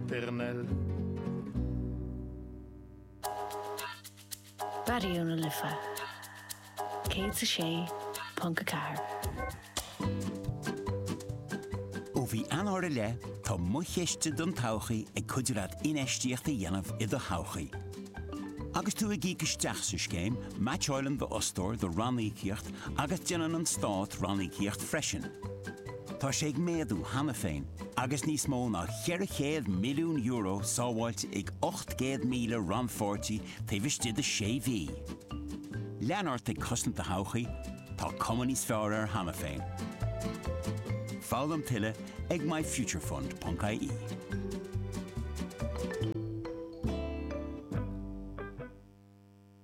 Pernelle. Raidió na Life 106.4. Ó mhí Eanáir i leith, tá MoChiste don todhchaí ag cuidiú leat infheistíocht a dhéanamh i do thodhchaí. Agus tú ag íoc isteach sa scéim, meaitseáileann d'fhostóir do ranníocaíocht agus déanann an Stát ranníocaíocht freisin. Tá sé ag méadú cheana féin agus níos mó ná €400 milliún sábháilte ag 800,000 rannpháirtí taobh istigh de sé mhí. Lean ort ag cosaint do thodhchaí, tá cuma níos fearr air cheana féin. Foghlaim tuilleadh ag myfuturefund.ie.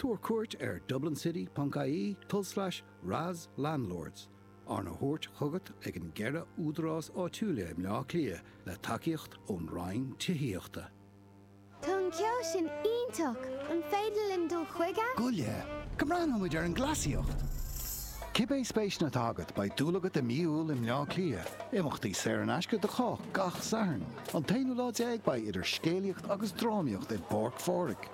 Tabhair cuairt ar dublincity.ie tulslais RAS Landlords, arna thabhairt chugat ag an gceithre údarás áitiúla i mBleá Cliath le tacaíocht ón Roinn Tithíochta. Tá an ceol sin iontach! An féidir linn dul chuige? Gabh i leith go mbreathnóidh muid ar an gcleasaíocht! Cibé spéiseanna atá agat, beidh dúil agat i Mí Iúil i mBleá Cliath. Imeachtaí saor in aisce do chách gach Satharn. An t-aonú lá déag beidh idir scéalaíocht agus drámaíocht i bPáirc Phádraig.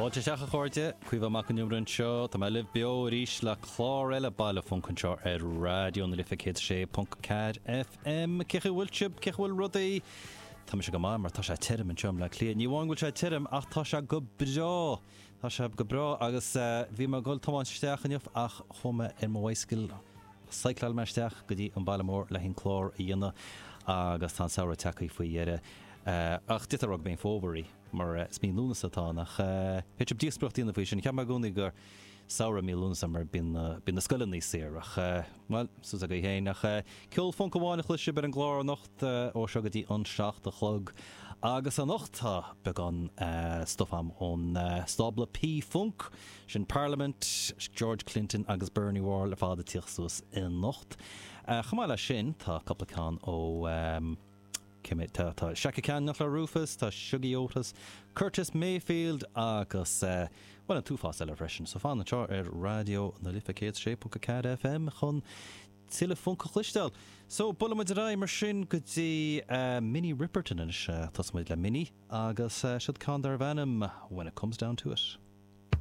Fáilte isteach a chairde, Caoimhe Mac an Iomaire anseo, tá mé libh beo arís le clár eile Baile Phunc anseo ar Raidió na Life 106.4 FM. Cé chaoi a bhfuil sibh, cé chaoi a bhfuil rudaí? Tá mise go maith mar tá sé tirm anseo i mBleá Cliath. Ní amháin go bhfuil sé tirm ach tá sé go breá. Tá sé go breá agus bhí mé ag dul tiomáint isteach inniu ach chuaigh mé ar mo bhicycle, chycleáil mé isteach go dtí an baile mór le haghaidh an clár a dhéanamh agus tá an samhradh tagtha faoi dheireadh ach d'fhéadfá a rá gurb é an fómhar é mar is mí Lúnasa atá ann ach b'fhéidir díospoireacht a dhéanamh faoi sin. Cheap mé i gcónaí gur samhradh mí Lúnasa mar bíonn na scoileanna saor ach Bhuel, fios agaibh féin, ach ceol func amháin a chloisfidh sibh ar an gclár anocht, ó seo go dtí an seacht a chlog. Agus anocht tá beagán stuif a'm ón stábla P Funk, sin Parliament, George Clinton agus Bernie Worrell ar fad ag tíocht suas anocht. Chomh maith leis sin tá cupla ceann ó. meas tú, tá Chaka Khan ach le Rufus. Tá Shuggie Otis, Curtis Mayfield agus, eh, bhuel, an t-uafás eile freisin. So fan anseo ar Raidió na Life 106.4 FM chun tuilleadh func a chloisteáil. So, buailfidh muid ar aghaidh mar sin go dtí, eh, Minnie Riperton anois. Eh, tosóidh muid le Minnie agus, eh, seod ceann darbh ainm When It Comes Down To It.